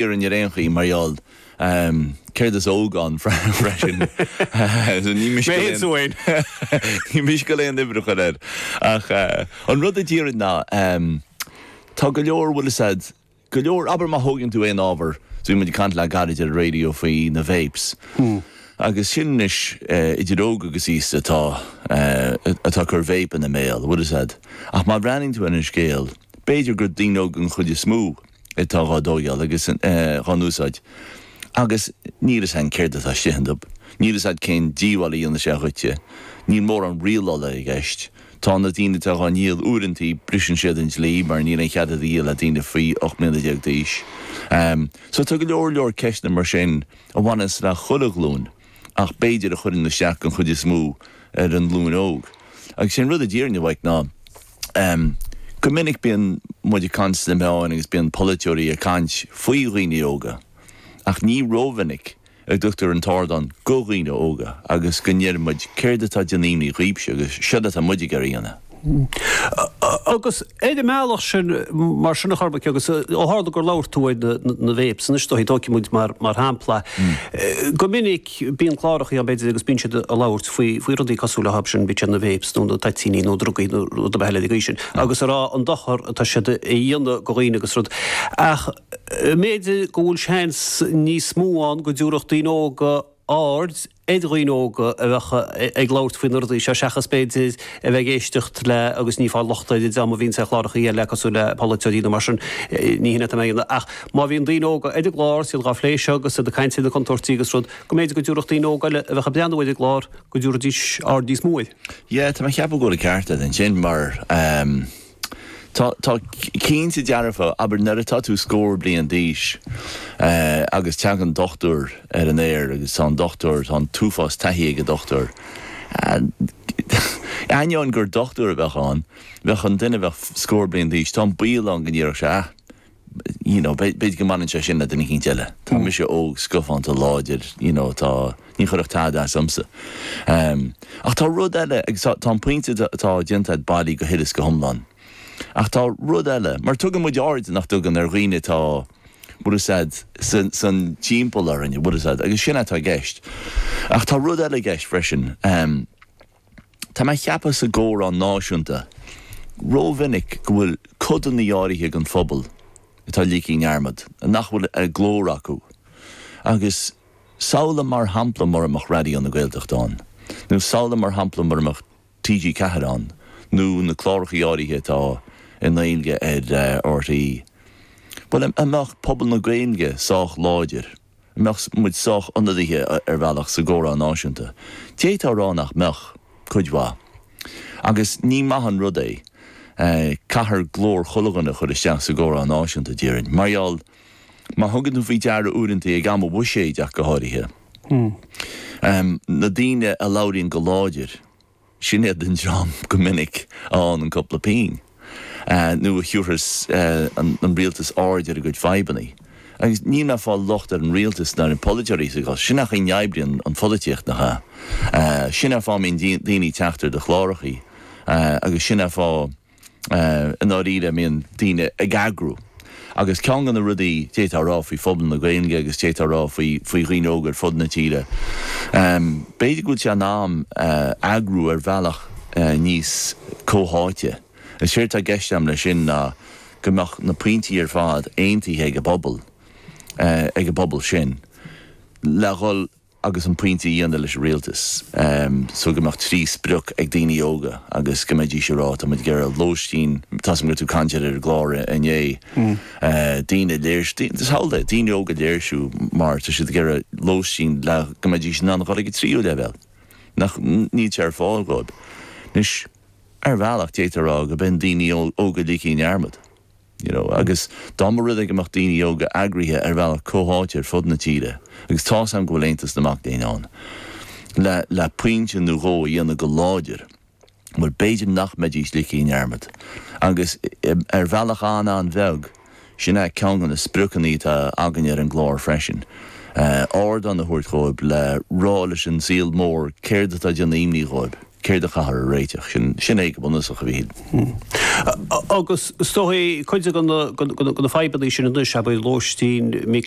fhírinne ar aon chaoi mar gheall céard 's óg ann freisin. Ní miste liom aon oibreacha ar air. Ach an rud a déarfainn ná, tá go leor, bhfuil fhios a'd, go leor, abair má thógann tú aon ábhar, so bhí muid ag caint le gairid ar an raidió faoi na vapes. Agus sin anois idir óg agus aosta atá ag cur vape ina mbéal, bhfuil fhios a'd. Ach má bhreathnaíonn tú ar an scéal, b'fhéidir gur daoine óga an chuid is mó, atá dhá dtóigeáil agus dhá n-úsáid, agus níl fhios a'ainn céard atá istigh iontab, níl fhios a'd cén díobháil a dhéanfaidh sé dhuitse, níl mórán rialála i gceist, tá na daoine atá dhá ndíol uaireantaí briseann siad an dlí mar níl aon chead iad a dhíol le daoine faoi ocht mbliana déag d'aois. So tá go leor leor ceisteanna mar sin a bhaineas le chuile ghlúin. ach b'fhéidir a chuireann isteach den chuid is mó ar an nglúin óg. Agus sé an rud i ndáiríre, a Mhaidhc, ná go minic bíonn muid ag caint sna meáin agus bíonn polaiteoirí ag caint faoi dhaoine óga ach ní rómhinic a dtugtar an t-ardán do dhaoine óga agus go ndeireann muid 'céard atá ag déanamh imní dhaoibhse' agus 'céard atá muid ag iarraidh a dhéanamh'. Agus ar an mbealach sin, mar sin a Chormaic, agus ó tharla gur labhair tú ar na vapes, anois ar ndóigh, tóigfidh muid mar shampla, go minic bíonn clárachaí ann, b'fhéidir, agus bíonn siad ag labhairt faoi rudaí cosúil le sin, bíonn siad ar na vapes nó na toitíní nó drugaí nó rud ar bith eile ina dhiaidh sin, agus ag rá an dochar atá siad a dhéanamh do dhaoine agus rud. Ach b'fhéidir go bhfuil seans níos mó ann go dtabharfadh daoine óga aird, ar dhaoine óga a bheadh ag labhairt faoi na rudaí seo seachas, b'fhéidir, a bheith ag éisteacht le, agus ní ag fáil locht ar an dream a bhíonns ar chlárachaí eile cosúil le polaiteoirí nó mar sin, ní shin é atá mé a dhéanamh ach má bhíonn daoine óga ar an gclár 's iad dhá phlé seo agus iad ag caint ar na contúirtí agus rud, go mb'fhéidir go dtabharfadh daoine óga eile a bheadh ag breathnú ar an gclár, go dtabharfaidís aird níos mó air. Yeah, tá mé a cheapadh go bhfuil an ceart agat ansin mar. Tá, tá, cinnte dearfa. Abair nuair atá tú scór bliain d'aois agus teagann dochtúir ar an aer agus tá an dochtúir, tá an t-uafás taithí ag an dochtúir, ainneoin gur dochtúir a bheadh ann, bheadh an duine a bheadh scór bliain d'aois, tá an baol ann go ndéarfadh sé, ah, you know, b'fhéidir go mbaineann sé sin le duine eicínt eile. Tá mise óg, scafánta, láidir, you know, tá, ní chuirfeadh tada as dhomsa. Ach tá rud eile, agus tá, tá an pointe atá déanta a'd bailí go huile is go hiomlán. Ach tá rud eile, mar tugann muid aird, nach dtugann, ar dhaoine atá, bhfuil fhios a'd, san, san timpeall orainn, bhfuil fhios a'd, agus sin atá i gceist. Ach tá rud eile i gceist freisin. Tá mé ceapadh sa gcomhrá náisiúnta rómhinic go bhfuil codanna áirithe den phobal atá ligthe i ndearmad nach bhfuil an glór acu agus samhla mar shampla mura mbeadh Raidió na Gaeltachta ann nó samhla mar shampla mura mbeadh TG4 ann nó na clárachaí áirithe atá i nGaeilge ar RTÉ bhuel an mbeadh pobal na Gaeilge sách láidir An mbeadh muid sách ionadaithe ar bhealach sa gcomhrá náisiúnta? D'fhéadfá a rá nach mbeadh, cuid mhaith. Agus ní maith an rud é. Caithfear glór chuile dhuine a chur isteach sa gcomhrá náisiúnta, déarfainn. Mar gheall, má thugann tú faoi deara uaireanta, ag am an bhuiséid ach go háirithe, na daoine a labhraíonn go láidir, Sin iad an dream go minic a fhaigheann an cúpla pinn, nó a thiúrfas an rialtas aird ar a gcuid fadhbanna. Agus níl mé ag fáil locht ar an rialtas ná ar na polaiteoirí sa gcás sin ach sin mar a oibríonn an pholaitíocht nach ea. Sin an fáth a mbíonn daoine ag teacht ar do chlárachaí agus sin an fáth. I ndáiríre, a mbíonn daoine ag eagrú. Agus ceann de na rudaí d'fhéadfá a rá faoi phobal na Gaeilge agus d'fhéadfá a rá faoi dhaoine óga ar fud na tíre, b'fhéidir go bhfuil sé in am eagrú ar bhealach níos comhtháite. Is éard atá i gceist agam leis sin ná go mbeadh na pointí ar fad aontaithe ag an bpobal, ag an bpobal sin, le dhul. agus an pointe a dhéanamh leis an Rialtas so go mbeadh trí sprioc ag daoine óga agus go mbeidís ag rá, tá muid ag iarraidh lóistín, tá a fhios agam go raibh tú ag caint air ar an gclár inné, daoine ag léirsiú, mar shampla, daoine óga ag léirsiú mar tá siad ag iarraidh lóistín le go mbeidís in ann a dhul ag an tríú leibhéal nach, níl sé ar fáil dhóib. Anois, ar bhealach, d'fhéadfá a rá go mbíonn daoine óga ligthe i ndearmad. you know agus dá mba rud é go mbeadh daoine óga eagraithe ar bhealach comhtháite ar fud na tíre agus tá's a'm go bhfuil Aontas na Mac Léinn ann le le pointe nó dhó a dhéanamh go láidir bhuel b'fhéidir nach mbeidís ligthe i ndearmad agus ar bhealach an-an-bheag sin é ceann de na spriocanna atá againne ar an gclár freisin ardán a thabhairt dhóibh le rá leis an saol mór céard atá ag déanamh imní dhóibh. céard a chaithfear a réiteach. Sin é go bunúsach a bhí. Agus is dóigh cuid de na fadhbanna sin anois, abair lóistín, mic